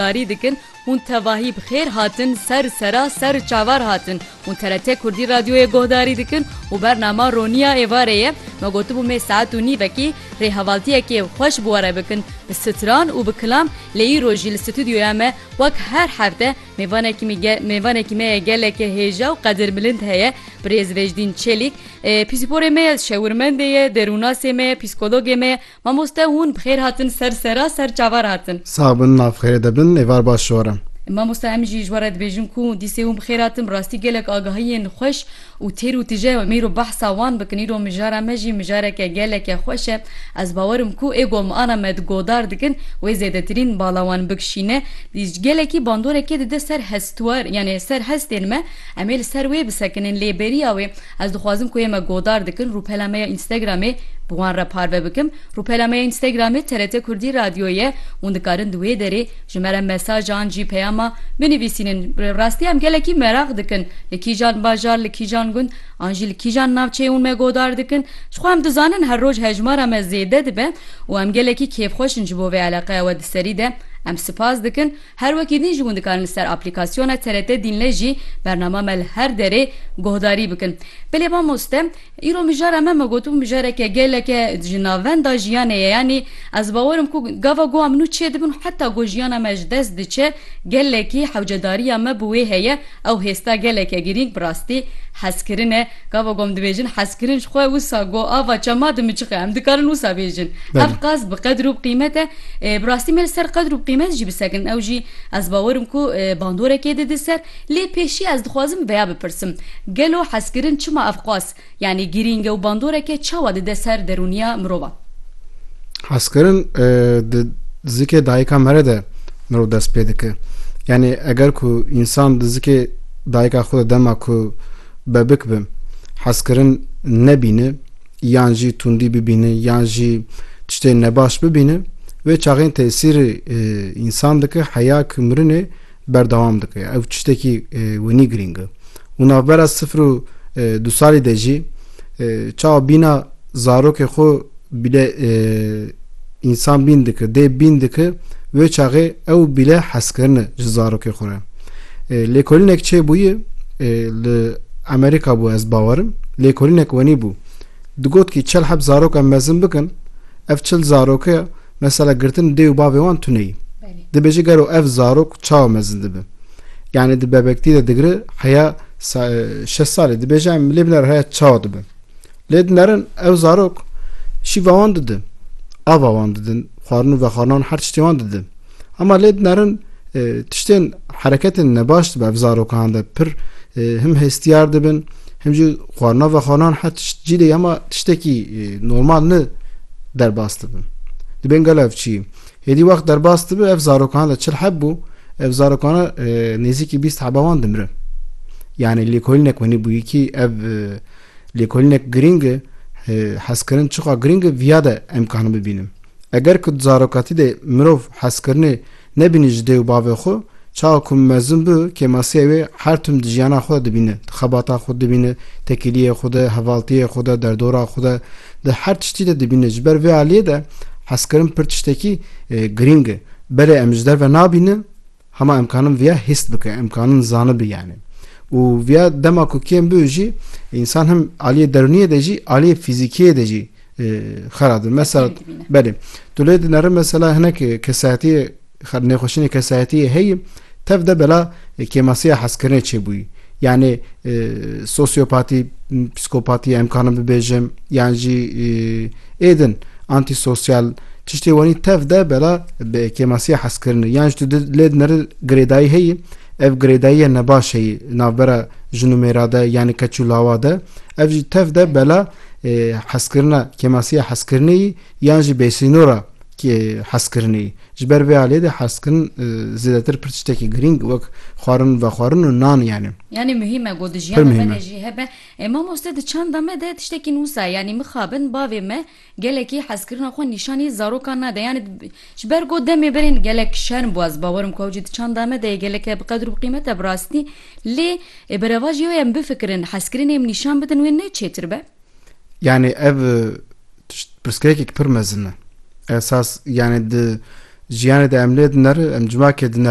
Darî dikin hûn tevahî bi xêr hatin ser sera ser çavar hatin hûn TRT Kurdî Radyoyê gohdarî dikin û bernama roniya êvarê ye me gotibû mê saet û nîvekî rê hevaltiyekê xweş bi were bikin bi stran û bi kilam lê îro jî li stûdyoya me wek her hefte mêvanekî me ye mêvanekî me ye geleke hêja û qedirmilind heye birêz Vejdîn Çelîk pîsporê me ye şewirmendê ye derûnasê me ye pîskologê me ye. Mamoste hûn bi xêr hatin ser sera ser çava re hatin. Sax bin ma bi xêrê de bin êvar baş ji we re. Mamoste em jî ji we re dibêjin ku dîsê hûn bi xêr hatin bi rastî gelek agahiyên xweş û têr û tije em îro behsa wan bikin îro mijara me jî mijareke geleke xweş e ez bawer im ku ê gomana me di godar dikin wê zêdetirîn bala wan bikişîne dîs gelekî bandoreke dide ser hestwar yanê ser hestên me Em ê li ser wê bisekinin lê bêriya wê ez dixwazim ku yê me godar dikin rûpela me ya Instagramê bi wan re parve bikim. Rûpela me ya Instagramê TRT Kurdî Radyo ye. Hûn dikarin di wê derê ji me re mesaj an jî peyama binivîsînin. Bi rastî em gelekî meraq dikin li kîjan bajar, li kîjan gund an jî li kîjan navçeyê hûn me godar dikin. Ji xwe em dizanin her roj hejmara me zêde dibe û em gelekî kêfxweş in ji bo vê eleqeya we di serî de. Em sipas dikin. Her wekî din ji wan dikarin li ser aplîkasyona TRT Dinle jî bernama me li her derê guhdarî bikin. Bilê mamoste, îro mijara me me gotibû mijareke geleke ji navenda jiyanê ye yanî ez bawer im ku gava guha min û çê dibin û heta ku jiyana me ji dest diçe gelekî hewcedariya me bi wê heye ew hêsta geleke girîng bi rastî hezkirin e Gava kom dibêjin hezkirin ji xwe wisa got ava çema dimiçixe em dikarin wisa bêjin. Ev qas bi qedir û bi qîmet e. Bi rastî me li ser qedir û bi qîmet jî bisekin ew jî ez bawer im ku bandorekê dide ser. Lê pêşî ez dixwazim veya bipirsim, gelo hezkirin çima ev qas yanî girîng e û bandoreke çawa dide ser derûniya mirovan? Hezkirin di zikê dayika mere de mirov dest pê dike. Yanî eger ku însan di zikê dayika xwe de dema ku Bebik bi hezkirin nebîne yan jî tundî bibîne yan jî tiştê nebaş bibîne wê çaxên tesîrê însan dike heya ku mirinê berdewam dike ya ev tiştekî winî girîng e û navbera sifir û du salî de jî çawa bîna zarokê xwe bîle însan bîn dike, dê bîn dike, wê çaxê ew bîle hezkirin e ji zarokê xwe re. Lêkolînek çê bûye li Amerîka bû ez bawerim, lêkolînek wenî bû. Digot kî çel heb zarok em mezin bikin, ev çil zaroke mesela girtin dê û bavê wan tuneyî. Dibêje gero ev zarok çawa mezin dibe. Yani di bebektî de digire heya şeş salê dibêje em lê binare heya çawa dibe. Lê dinerin ew zarok şîva wan didin, ava wan didin, xwarin û vexwarinan her tiştê wan didin. Hema lê dinerin tiştên hereketên nebaş dibe ev zarokan de pir him hestiyar dibin, him jî xwarina vexwarinan her tişt cî lê hema tiştekî normal ne derbas dibin. Dibên gel ev çî. Hêdî wext derbas dibe ev zarokan de çil heb bû, ev zarokana nêzîkî bîst heba wan dimirin. Yani lêkolînek wenî bûyî kî ev Lêkolînek girîng e, hezkirin çiqa girîng e viya de em karin bibînin. Eger ku di zarokatî de mirov hezkirinê nebînî ji dê û bavê xwe, çawa ku mezin bi kêmasiya wê her tim di jiyana xwe de dibîne, di xebata xwe de dibîne, tekîliyê xwe de, hevaltiyê xwe de, derdora xwe de, di her tiştî de dibîne. Ji ber vê aliyê de hezkirin pir tiştekî girîng e. Belê em ji derve nabînin. Hema imkanin viya hîst bike, imkanin zanibî yanî. Û viya dema ku kêm biû jî însan him aliyê derûniyê de jî aliyê fîzîkiyê de jî xera dibin. Mesela belê. Tu lê dineri mesela hinek kesayetiyê nêxweşînê kesayetiyê heyî tev de bela kêmasiya hezkirinê çêbûyî. Yanê sosyopatî, psîkopatî em kanim bibêjim yan jî êdin antîsosyal tiştê wanî tev de bela bi kêmasiya hezkirinê yan ji tu lê dinir girêdayî heyî ev girêdayiye nebaş heyî navbera jin û mêra de yanî keç û lawa de ev jî tev de bela hezkirina kêmasiya hezkirinê yan jî bêsînora hezkirinê Ji ber vê aliyê de hestkirin zêdetir pir tiştekî girîng wek xwarin, vexwarin û nan yani. Yanî muhîm e got di jiyana me de jî hebe. Ê mamoste di çanda me de tiştekî nûsa yanî mixabin bavê me gelekî hezkirina xwe nîşanî zarokan nade yanî ji ber got demê berên gelek şerm bû ez bawer im ku ew jî di çanda me de yê geleke bi qedir û bi qîmet e bi rastî lê ê bi revajî wê em bifikirin hezkirinê em nîşan bidin wê ne çêtir be. Yani ev pirsgirêkek pir mezin e. Esas yani di jiyanê de em lê dineri em civakê dineri